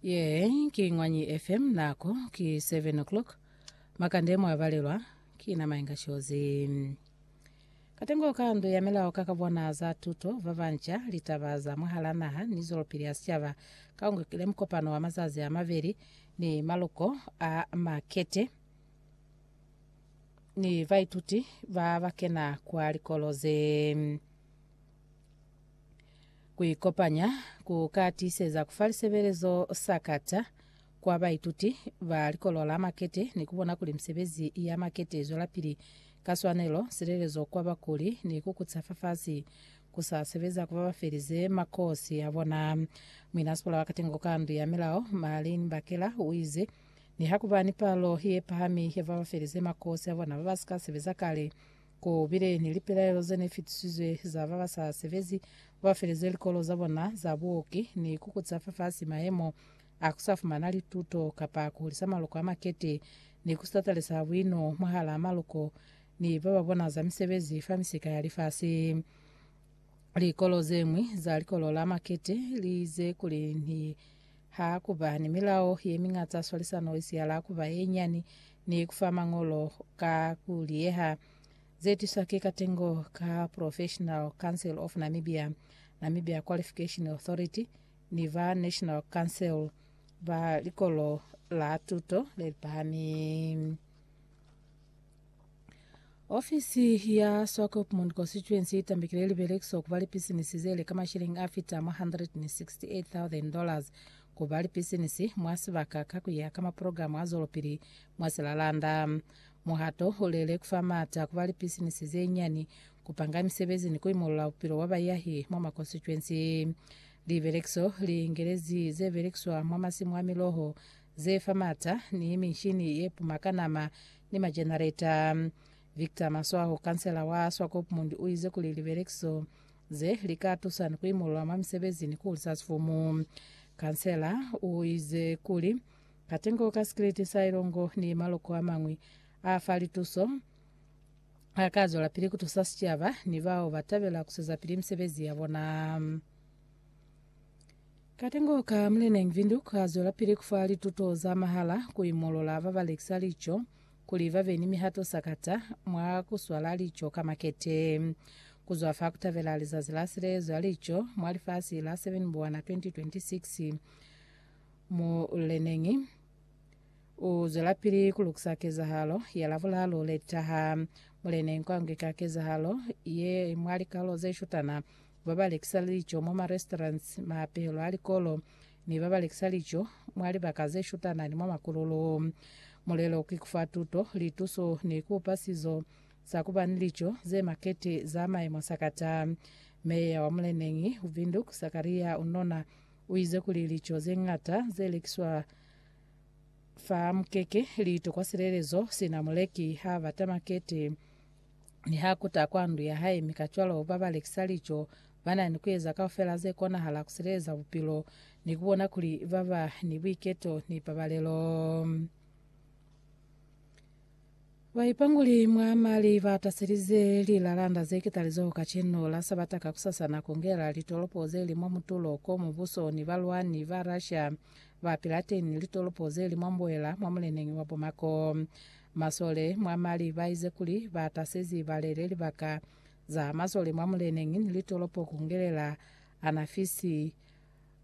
ye ki ngwanyi fm nako ki 7 o'clock makande mwabalelwa ki na mainga shozi katengo ka ndu ya melao ka kabona za tuto va banja litaba za mwahala naha ni zwelopili ya sicaba ka ungekile mkopano wa mazazi a mabeli ni maluko a makete ni baituti ba bakena kwa likolo ze Ku ikopanya ku ka tiiseza ku fa lisebelezo sa kata kwa baituti ba Likolo la Makete ni ku bona kuli misebezi ya makete i zwelapili ka swanelo, silelezo kwa bakuli, ni ku kuca fafasi ku sa sebeza ku ba ba felize makosi a bona. Muinasikola wa Katengo ka Ndu ya Milao, Marlene Bakela, u ize, Nihakuba ni palo ye pahami ya ba ba felize makosi a bona ba ba si ka sebeza kale, Ku bile ni lipelaelo ze ne fitisizwe za ba ba sa sebezi, ku ba felezwe likolo za bona za buoki, ni ku kuca fafasi mayemo a ku sa fumana lituto kapa ku hulisa maloko a makete, ni ku sitatalisa buino mwahalaa maloko ni ba ba bona za misebezi fa misika ya lifasi. Likolo ze ñwi za likolo la makete li ize kuli ni ha ku ba ni milao ye miñata ya swalisano i siyala ku ba ye nyani ni ku fa mañolo ka ku liyeha ze tiswa ki katengo ka Professional Council of Namibia, Namibia Qualification Authority ni ba National Council ba likolo la tuto le lipahami. Ofisi ya Swakopmund Constituency itambikile libelekiswa kuba lipisinisi zeli ka mashilingi afita mwa 168,000 dollars kuba lipisinisi mwa sibaka ka kuya ka maprogramu a zwelopili mwa Silalanda. Muhato ulele kufa maata kuba lipisinisi zenyani, kupanga misebezi ni kuimolola bupilo bwa bayahi mwa makonstituensi. Libelekiso liingelezi zebelekiswa mwa masimu a miloho ze fa mata, ni michini ye puma ka nama, ni majenareta. Victor Maswaho, kansela wa Swakopmund, u ize kuli libelekiso ze li ka tusa ni ku imolola mwa misebezi ni ku hulisa sifumu. Kansela u ize kuli, Katengo ka sikiliti sa ilongo ni maloko a mañwi a fa lituso a ka zwelapili ku tusa sicaba ni bao ba tabela ku zwezapili misebezi ya bona. Katengo ka Mlnenc Windhoek kazwelapili kufa lituto za mahala kuimolola babalekisa lico kuli babe ni mihato sakata mwa kuswala lico ka makete. Kuzwa fa kutabela lizazi la silezo ya lico mwa lifasi la 7 Buwana 2026, Mlnenc uzwelapili kulukisa kezahalo ya Labulaalu letaha. Mlnenc angweka kezahalo ye mwa likalo zeshutana ba ba lekisa lico mwa ma restaurants, maapelo a likolo, ni ba ba lekisa lico mwa libaka ze shutana ni mwa makululu. Mulelo ki ku fa tuto, lituso ni ku upa sizo sa ku ba ni lico ze makete za maimo sakata. Meya wa muleneñi u Windhoek, Sakaria Unona, u ize kuli lico ze ñata ze lekiswa fa mukeke li tokwa silelezo sina muleki ha bata makete. mi ha kuta kwa ndu ya hae, mi kacwalo ba ba lekisa lico ba na ni ku eza kaufela ze konahala ku sileleza bupilo ni ku bona kuli ba ba ni buiketo ni pabalelo. Baipanguli mwa mali ba taselize lilalanda ze kitalizoho kacenu la Sabata kakusasana ku ngela litolopo ze li mwa mutulo ko mubuso ni balwani ba Russia ba pilateni litolopo ze li mwa mbuela mwa muleneñi wa Bomako. Masole mwa Mali ba ize kuli ba tasezi balele libaka za masole mwa muleneñi ni litolopo ku ngelela Anafisi,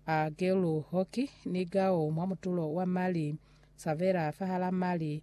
a Gelu Hoki ni Gao mwa mutulo wa Mali, Savera fahala Mali,